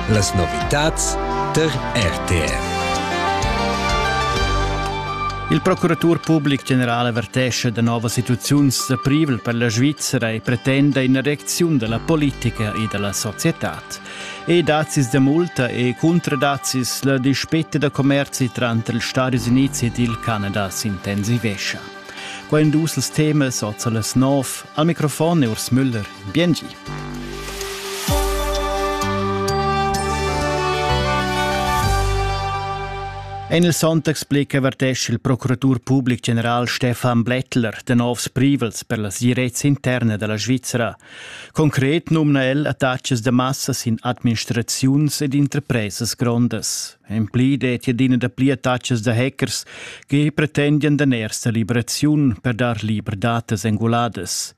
Las novitads tar RTR. Il procuratur public general avertesce da novas situaziuns da privel per la Svizzera e pretenda ina reacziun della politica e della societad. E dazis de multa e contradazis la dispette da commerzi tranter ils Stati Uniti ed il Canada s'intensivescia. Qua in dus temas oza las nov. Al microfon è Urs Müller. Biengi. En il Sonntagsblick avertescha il procuratur public general Stefan Blättler de novs privels per la sirezza interna della Svizzera. Concret numna el attachas de massas in administraziuns ed interpresas grondas. En pli det adina da pli attachas de hackers che pretendian de ersta liberaziun per dar liber datas enguladas.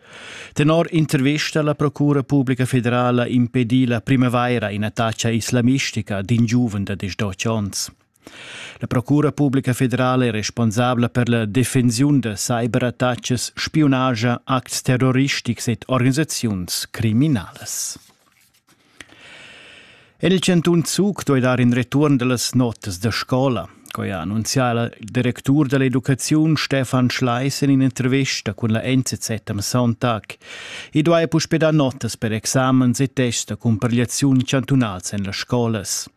Tenor intervista la Procura publica federala impedi la primavaira in'attacca islamistica d'in giuven da 18 onns. La Procura publica federala è responsabla per la defensiun da cyberattacas, spiunagia, acts terroristics ed organisaziuns criminalas. En il chantun Zug doi dar in return dellas notas da scola. Coi ha annunzià il directur dell'educaziun Stefan Schleis in intervista cun la NZZ am Sonntag. I duai puspè dar notas per examens e tests da cumpigliaziun chantunals en las scolas.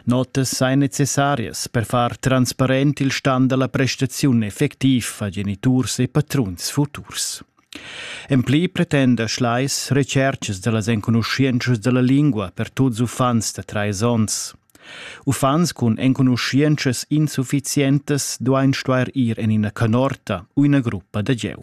Notas ein necessarias per far transparent il stan dalla prestaziun effectiv a geniturs e patruns futurs. En pli pretenda Schleis retschercas dallas enconuschientschas dalla lingua per tuts uffants da treis onns. Uffants cun enconuschientschas insufficientas duein stuer ir en ina canorta u ina gruppa da gieu.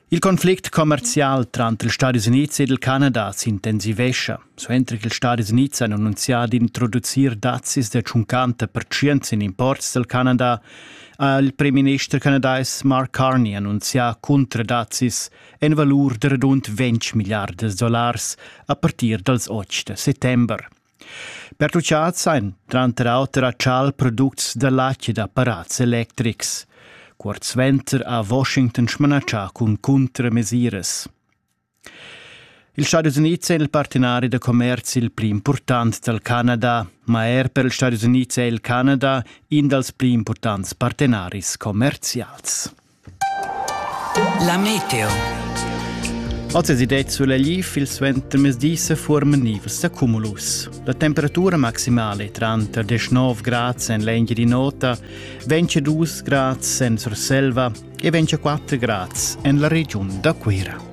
Il conflict commercial tranter ils Stadis Unids ed il Canada s'intensivescha. Suenter che ils Stadis Unids han annunzià d'introducir dazzis da 50 percent in imports dal Canada, ha il premierminister canadais Mark Carney annunzià cuntradazzis en valur da radund 20 milliardas dollars a partir dals 8 settember. Pertuchads ein tranter auter atschal products da latg ed apparats electrics. Cuort suenter ha Washington smanatschà cun cuntramesiras. Ils Stadis Unids èn il partenari da commerzi il pli impurtant dal Canada, ma er per ils Stadis Unids è il Canada in dals pli impurtants partenaris commerzials. La meteo. Oz es idé sulla gli fil suenter mesdi se forma nivels da cumulus. La temperatura maximale tranter 19 grads en l'enghi di nota, 22 grads en Surselva e 24 grads en la regiun da Cuira.